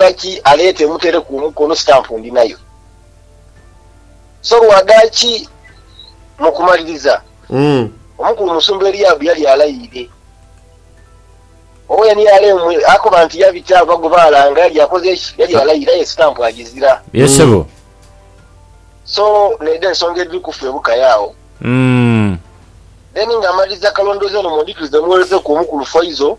Lwaki aleeta emutere ku omukono stamp ndi nayo so lwadaki mu kumaliriza omukulu musumba Eliab yali alayiire Owen Alem akoba nti yabita ava gwe balanga yali akoze ki yali alayiire aye stamp agizira. Ye sebo. So nedho ensonga edhiri ku ffe bukai agho. Then nga amaliriza kalondoozi eno mundhikirize muwereze ku omukulu Faizo.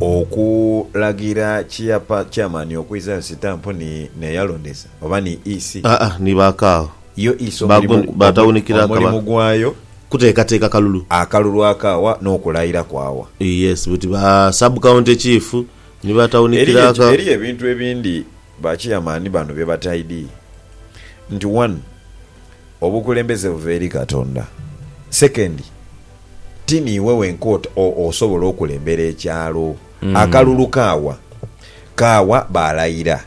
Okulagira kyapa chairman okwizayo sitampu ni n'eyalondesa oba ni EC? Aa ni ba kaagho. Yo EC omulimu gwayo kuteekateeka kalulu. Akalulu akaawa n'okulayira kwaawa. Yes buti ba sub county chief ni ba tawunikira aka. Eriyo ebintu ebindi ba chairman bano bye bataidii nti one obukulembeze buva eri Katonda, second, ti niiwe wenka ot o osobola okulembera ekyalo. Akalulu kaawa? Kaawa baalaira.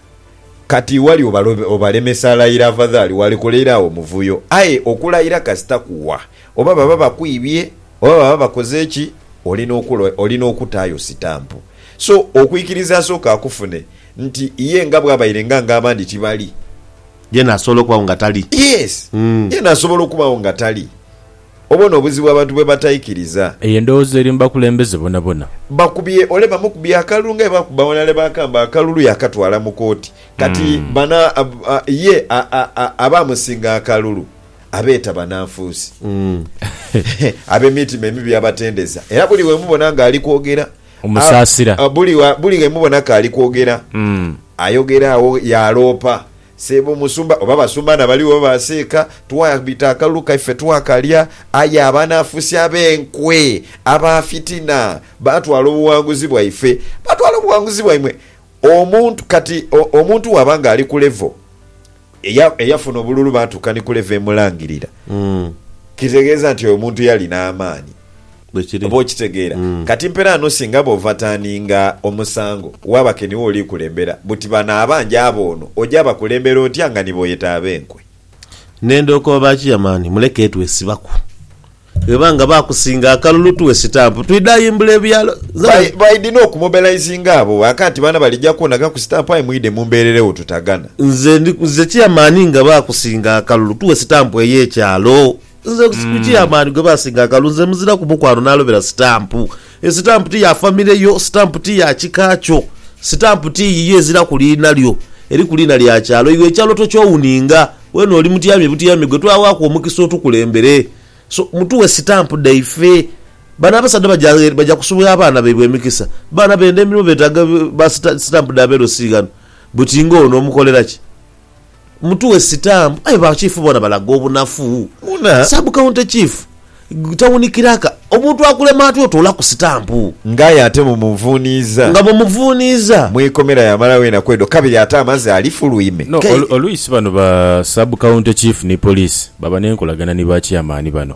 Kati wali obalo obalemesa laira afadhali waalikoleire agho omuvuyo. Aye okulaira kasita kuwa? Oba baba bakwibye, oba baba bakoze ki, oli n'okula oli n'okutaayo sitampu. So okwikiriza asooke akufune nti ye nga bw'abaire nga ng'abandi tibali. Yeena asobola okubagho nga tali. Yes. Yeena asobola okubagho nga tali. Obone obuzibu abantu bwe bataikiriza. Eyo endowooza eri mu bakulembeze bonabona. Bakubye ole bamukubye akalulu nga bwe baakuba Wanale Bakamba akalulu yaakatwala mu kooti. Kati bano ye abaamusinga akalulu abeeta bananfuusi, ab'emitima emibi abatendeza era buli we mubona ng'ali kwogera amusaasira, buli ghe mubona k'ali kwogera ayogera agho yaaloopa. Seebo musumba oba basumba na bali oba ba seeka twabita akalulu kaife twakalya aye abanafusi abenkwe aba fitina batwala obuwanguzi bwaife batwala obuwanguzi bwaimwe omuntu kati omuntu waba nga ali ku level eya eyafuna obululu batuuka ni ku level emulangirira kitegeza nti oyo omuntu yalina amaani. Bwekiri. Oba okitegeera? Kati mpera ghano singa bw'ovatanhinga omusango, waaba ke niwe oli kulembera, buti bano abanja abo ono oja bakulembera otya nga nibo yeta ab'enkwe? N'endhoka oba ki yamani muleke twesibaku. Bweba nga baakusinga akalulu tughe sitampu twidhe ayimbula ebyalo. Nze By, bwe. baidhi n'okumobilizinga abo ghaka nti baana balija kwonagaku sitampu aye mwidhe mumbeereregho tutagana. Nze ndi, nze chairman nga baakusinga akalulu tughe sitampu ey'ekyalo. Nze ku chairman gwe basinga akalu nze muziraku mukwano nalobera stamp. Estamp ti ya family yo, stamp ti ya kika kyo, stamp ti yiyo eziraku liina lyo eriku liina lya kyalo. Iwe ekyalo tokyowuninga wena oli mutyami butyami gwe twawaku omukisa otukulembere so mutuwe stamp dhaife. Bano abasaadha baja kusubwa abaana baibwe emikisa. Baana benda emirimo betaga ba stamp dha belosi ghano buti nga ono omukolera ki? Mutughe sitampu. Aye ba chief bona balaga obunafu. Sub county chief, tawuni kiraka, omuntu akulema atya otoolaku sitampu? Nga aye ate mumunvuuniiza. Nga mumuvuuniiza. Mu ikomera yamalawo enaku edho kabiri ate amaze ali fuluime. No, oluisi bano ba sub county chief ni police baba nenkolagana ni ba chairman bano.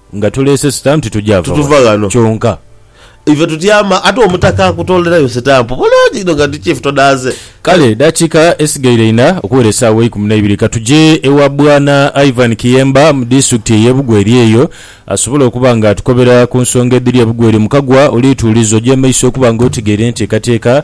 Nga tuleese sitampu tugya va Tutuva wano ghano. kyonka. Ife tutyama ate Omutaka akutoolerayo sitampu bulungi inho nga ndi Chief todaaze. Kale edhakiika esigaire inha okuwera esaawa eikumi naibiri katugye ewa Bwana Ivan Kiyemba mu Disitulikiti eye Bugweri eyo asobole okuba nga atukobera ku nsonga edhiri e Bugweri. Mukagwa oli tuuliza ogye maiso okuba nga otegeire enteekateeka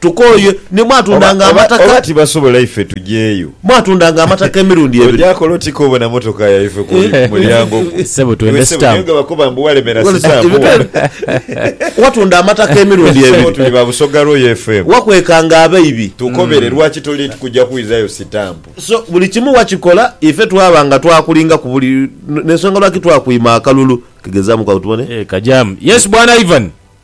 Tukooye ni mwatundanga Oba, oba, amataka. oba tibasobola ife tujeeyo. Mwatundanga amataka emirundi ebiri. Oja kola oti kobona motoka yaife ku Eh. ku mulyango gwo? Ssebo Iwe twende ssebo niyo stamp. ghebakoba mbu walemera Wale- stamp ebibe- wano. Watunda amataka emirundi Ssebo ebiri. tuli ba Busoga Royal FM. Wakwekanga abaibi. Tukobere lwaki toli kuja kwizayo sitampu. So buli kimu wakikola ife twaba nga twakulinga ku buli n'ensonga lwaki twakwima akalulu. Kegezamuku awo tubone. Eh, kajaamu. Yes, Bwana Ivan.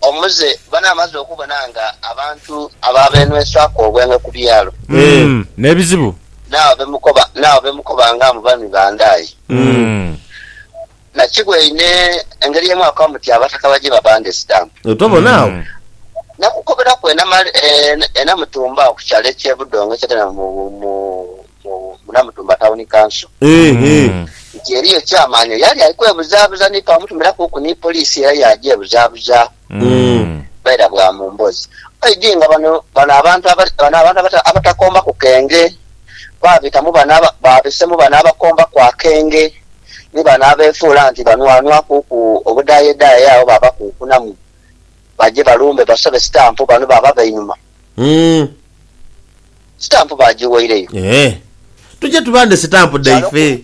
Omuze bano amaze okubona nga abantu abaabenhwesaaku obwengwe ku byalo. Ee, n'ebizibu. N'abo be mukoba, n'abo be mukoba nga mu bami ba nda ye. Nakigwaine engeri ye mwaakoba muti abataka baje babande sitampu. Tobona agho? Nakukoberaku enama, ee, enamutumba agho ku kyalo eky'e Budongo ekyetanira mu, mu, mu. Munamutumba Town Council nti eriyo Chairman eyali ali kwebuzaabuza ni twamutumirakuuku ni poliisi era yaagya ebuzabuzaaku bwaira bwa mu mbozi. Oidhi nga bano bano abantu bano abantu abatakombaku kenge baabitamu bano baabisemu bano abakombaku akenge ni bano abeefuula nti banwanwakuuku obudhaayedaaya agho baabakunkunamu baje balumbe basobe sitampu bano baaba bainhuma. Sitampu baagiwaireyo. Ee. Tuje tubande sitampu dhaife.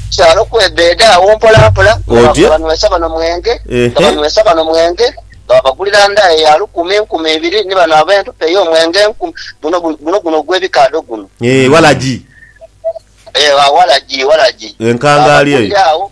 Kyalo okwebeeda agho mpolampola nga babanhwesa bano mwenge, nga banhwesa bano mwenge, nga babagulira ndaaya ya lukumi, enkumi ibiri, ni bano ab'entupa ey'omwenge enkumi. Guno, guno, guno ogw'ebikaadho guno. Ee, walagi. Ee, walagi, walagi. Enkangaali eyo. Baabagulira agho.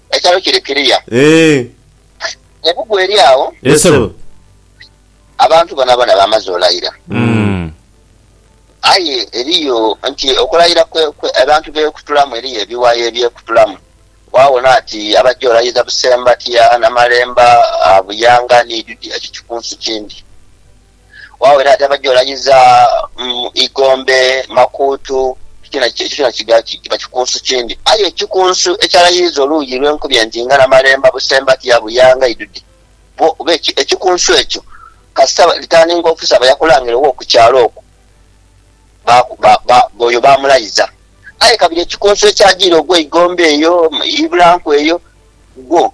Ekyaalo kiri kiriya. Eeh. Ne bugwa eri agho. Eeh sebo. Abantu bonabona bamaze olayira. Umm. Aye eriyo nti okulayira kwe abantu byekutulamu eriyo ebiwayi ebyekutulamu. Wawona nti abajja olayiza Busembatia, Namalemba, Buyanga ni Idudi ekyo kikunsu kindi. Wawo era yatema gy'olanyiza igombe, makuutu, ekyo kyona kiba kikunsu kindi. Aye ekikunsu ekyalayiza oluuyi lw'enkubi entinga n'amalemba busembatiya buyanga idhudhi bwo kuba ekikunsu ekyo kasita ritaaninga ofusa aba yakulangire wo ku kyalo okwo oyo baamulayiza. Aye kabiri ekikunsu ekyajiira ogw'eigombe eyo, eibulanku eyo, gwo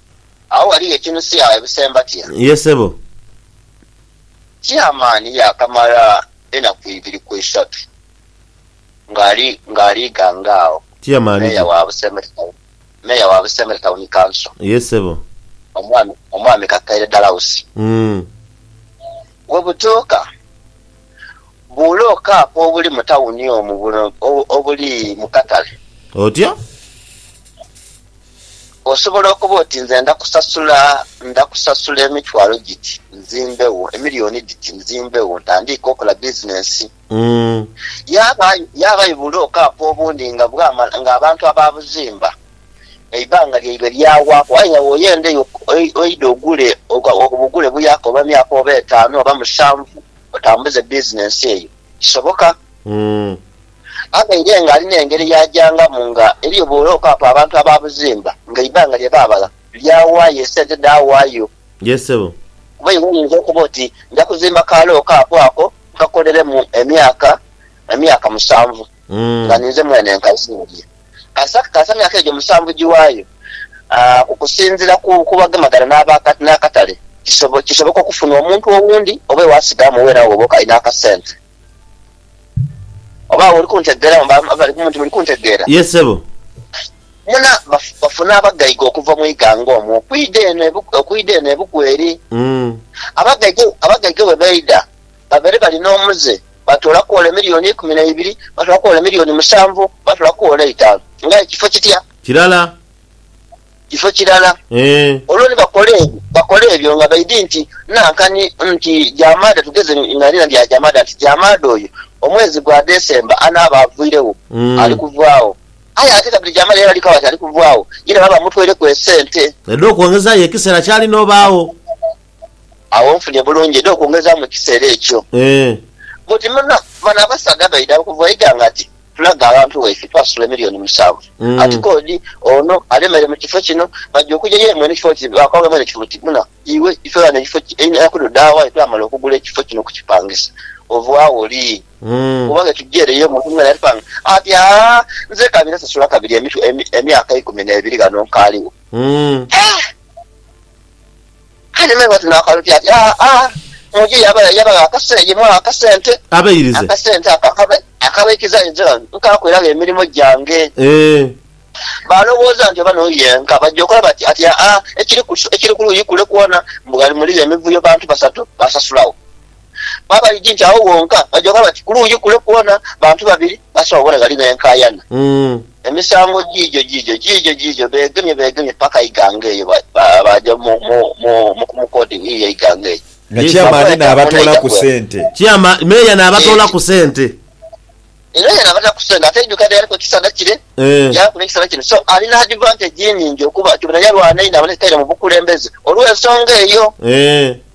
Agho ghaligho ekinusia ebusemba tia? Ye sebo. Chairman yaakamala enaku ibiri ku isatu ng'ali ng'ali ghanga agho. Chairman Mayor ki? wa Busemere Town Mayor wa Busemere Town Council, Ye sebo. Omwami Omwami Kakaire Dalausi. Umm. Bwe butuuka, buula okaapu obuli mu tawuni omwo buno obuli mu katale. Otya? Osobola okuba oti, Nze nda kusasula, nda kusasula emitwalo giti nzimbegho, emilioni dhiti nzimbegho ntandiike okola bizinensi. Yaabayo bulooka apo obundi nga bwamala, nga abantu abaabuzimba eibanga lyaibwe lyaghaaku aye nga bw'oyenda eyo oidha ogule, obugule buyaku oba myaka oba etaanu oba musanvu otambuze bizinensi eyo. Kisoboka. Abaire nga alina engeri y'agyangamu nga eliyo bw'oira okwaaku abantu abaabuzimba nga eibanga lye baabala lyawaayo esente dhaawaayo. Yee ssebo. Kuba iwe oyinza okuba oti nja kuzimba ka looka ako ako nkakoleremu emyaka emyaka musanvu nga ninze mwene nkazimbye. Kasita kasita emyaka egyo musanvu giwaayo, okusinziira ku ku bagemagana n'aba n'akatale kisoboka okufuna omuntu owundi oba ewaasigamu weena wo bwoka alina akasente. Oba awo oli kuntegeera awo mba bali kumpi muli kuntegeera. Ye ssebo. Muna, baf, bafuna abagaiga okuva mu ighanga omwo okwidha eno ebu, okwidha eno ebuku eri. Mm. Abagaiga, abagaiga bwe baidha, babaire bali n'omuze, baatoolaku ole milioni eikumi na ibiri, baatoolaku ole milioni musanvu, baatoolaku ole eitaanu. Ng'aye kifo kitya? Kirala. kifo kirala. Olwo ni bakola ebyo, bakola ebyo nga baidhi nti, Nankani nti Jamaada, tugeze nga lina lya Jamaada, nti Jamaada oyo omwezi gwa Desemba anaaba avwiregho, ali kuvaagho. Aye ate kabiri Jamaada yena ali kaba nti ali kuvaagho, yena baaba bamutweireku esente. Edh'okwongezaayo ekiseera kyali n'obaagho. Agho nfunye bulungi edh'okwongezaamu ekiseera ekyo. Buti bano abasaadha baidha okuva eighanga ati. Tulaga abantu baife twasula emilioni musanvu ati kodi ono alemere mu kifo kino baja okuja ye mwene ekifo kino bakwanga mwene ekifo kino buna iwe ife ghano ekifo kino enaku dho dha wa twamala okugula ekifo kino okukipangisa ova woli oba ghe tuja ere yo muntu mwena yatupanga ati haa nze ka bira sasula kabiri emyaka ikumi ne biri ghano nkaligho eeh. Aye me bwe tunakalubya ati, Aa, muju yaba, yabagho akase, ye mwagho akasente. Abairize. Akasente ako akaba, akabaikiza enjala nti, Nkaakoiragho emirimo gyange. Eeh. Baalowooza nti oba n'oyo yenka. Baja okola bati, ati, Aa, ekiri ku, ekiri ku luuyi kule kwona, mbu ghali muligho emivuyo bantu basatu, baasasulagho. Babaidhi nti agho ghonka bajoka bati, Kulungi kule kwona bantu babiri basobola obona ghali benkayana. Emisango giigyo giigyo, giigyo giigyo, beegemye beegemye paka eighanga eyo baaja mu mukooti yiiyo eighanga eyo. Nga Chairman naabatoolaku sente. Chairman, Meeya naabatoolaku sente. Meeya naabatoolaku sente. Ate eidhuuka lyaliku ekisana kire, lyaaku n'ekisana kino. So alina advantage nhingi okuba ati bwena yalwana einho abone taira mu bukulembeze olw'ensonga eyo.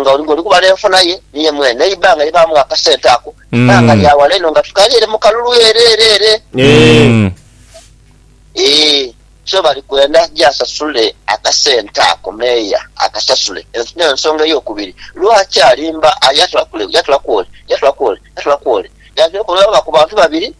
nga oli kubala enfuna ye ni ye mwene, n'eibanga lye baamuwa akasente ako ibanga lya wala inho nga tukali ere mu kalulu ere ere ere. Ee, so bali kwenda je asasule akasente ako, meeya akasasule. Eno y'ensonga ey'okubiri lwaki alimba aye yatulaku ole, yatulaku ole, yatulaku ole. Yantulaku olw'abaku bantu babiri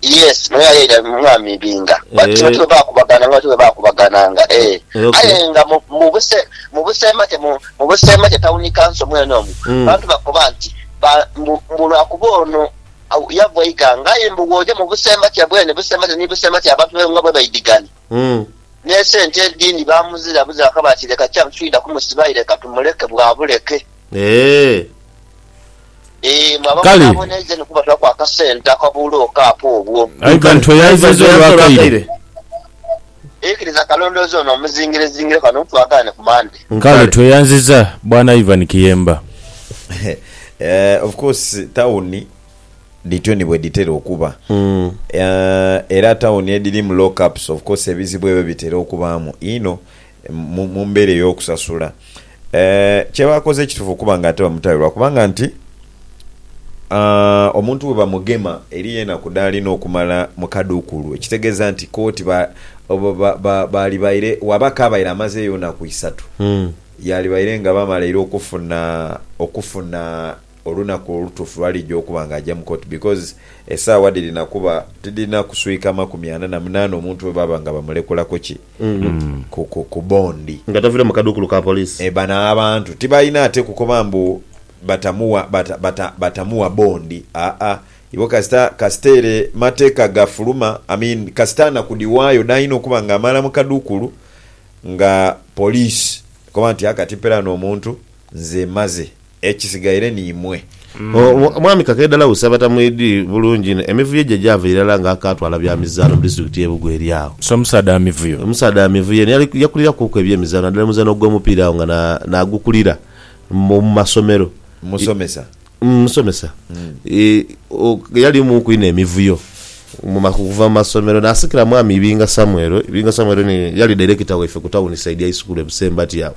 Yes naye aye ya mwami binga but kino tiwe bakubagana nga tiwe bakubagana nga eeh aye nga mubuse mubuse make mu mubuse make town council mwene omwo abantu bakoba nti ba mbu mbu lwakuba ono yava eika nga aye mbu woja mubuse make bwene buse make ni buse make abantu be nga bwebaidigana ne sente edindi bamuzira buzira bakaba nti leka kyamu titwida kumusiba aye leka tumuleke bwabuleke eeh. Kale. Aye ghano tweyayiziza olwa kaire. Kale tweyanziza bwana Ivan Kiyemba. Eeh of course tawuni dhityo ni bwedhitera okuba era tawuni edhirimu lock ups of course ebizibu ebyo bitera okubaamu inho mu mbeera ey'okusasula. Kye baakoze kitufu okuba nga ate bamutayo lwa kubanga nti omuntu bwe bamugema eriyo enaku dh'alina okumala mu kadukulu, ekitegeeza nti kooti baalibaire waaba kaabaire amazeeyo naku isatu, yaalibaire nga bamalaire okufuna okufuna olunaku olutuufu lw'alija okuba nga aja mu kooti because esaawa dhirina kuba tidhirina kuswika makumi ana na munaana omuntu bwe baba nga bamulekulaku ki. ku bondi. Nga tavire mu kadukulu ka police. E bano abantu tibalina ate kukoba mbu batamuwa bata batamuwa bondi aa ibo kasita kasita ere mateka gafuluma I mean kasita anakudhiwayo dhalina okuba nga amala mukadukulu nga police ekoba nti aa kati mperaano omuntu Nze maze. Ekisigaire ni imwe. Omwami Kakeedhala Usi abatamwidhi bulungi inho emivuyo gye gyava irala nga akaatwala bya mizaanho mu disitulikiti y'e Bugo eri agho. So musaadha wa mivuyo? Omusaadha wa mivuyo eno yakulirakuku eby'emizaanho naddala omuzaanho ogw'omupiira agho nga naagukulira mu masomero. Musomesa? Musomesa. Yalimuku inho emivuyo okuva mu masomero naasikira mwami Ibinga Samuel. Ibinga Samuel ni yali dairekita waife ku tawuni saidi ya isukulu e Busembati agho.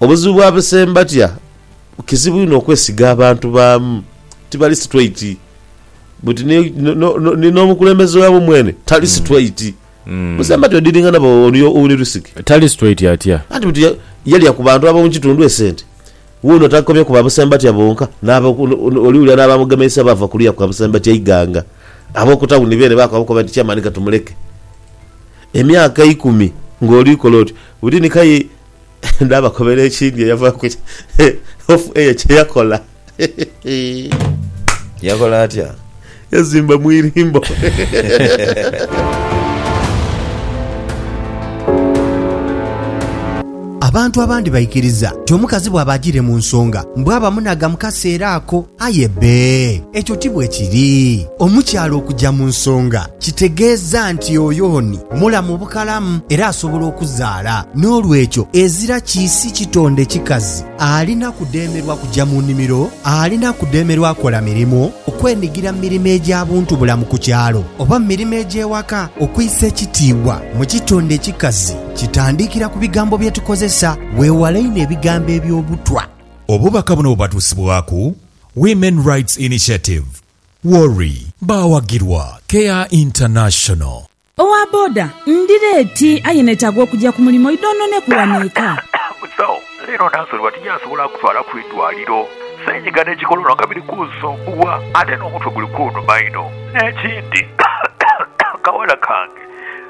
Obuzibu bwa besembatia, kizibu inho okwesiga abantu baamu, tibali situeiti. Buti ni, ni n'omukulembeze waabwe mwene tali situeiti. Besembatia odidingana ba oli ouli lusike. Tali situeiti atya? Anti buti yalya ku bantu ab'omu kitundu esente. Wuuno takomye ku ba besembatia bonka, n'abo oli wulira n'abamugemeisa baava ku luya kwa besembatia eighanga. Ab'oku tawuni beene baakoba nti Chairman ka tumuleke emyaka eikumi ng'oli kola otyo. Buti ni k'aye Naabakobera ekindi eyavaaku hofu eye kye yakola. Yakola atya? Yazimba mu irimbo. Abantu abandi baikiriza nti omukazi bwaba ajiire mu nsonga, mbu aba munaga mu kaseera ako. Aye bbe, ekyo ti bwe kiri. Omukyala okuja mu nsonga kitegeeza nti oyo ni mulamu bukalamu era asobola okuzaala. N'olwekyo, ezira kiisi kitonde kikazi alina kudheemerwa kuja mu nimiro, alina kudheemerwa kola mirimu, okwenigira mu mirimo egya buntubulamu ku kyalo, oba mu mirimo egy'ewaka. Okuisa ekitiibwa mu kitonde ekikazi kitandikira ku bigambo bye tukozesa. Weewale inho ebigambo eby'obutwa. Obubaka buno bubatuusibwaku Women Rights Initiative, WORI. Baawagirwa Care International. Owa boda, ndi leeti aye netaaga okugya ku mulimo idhoononeku wano eka. Musawo, leero Nansolibwa tijasobola kutwala ku idwaliro. Senyiga ne kikolono nga biri kunsumbuwa ate n'omutwe guli kunuma inho. N'ekindi, akawala kange.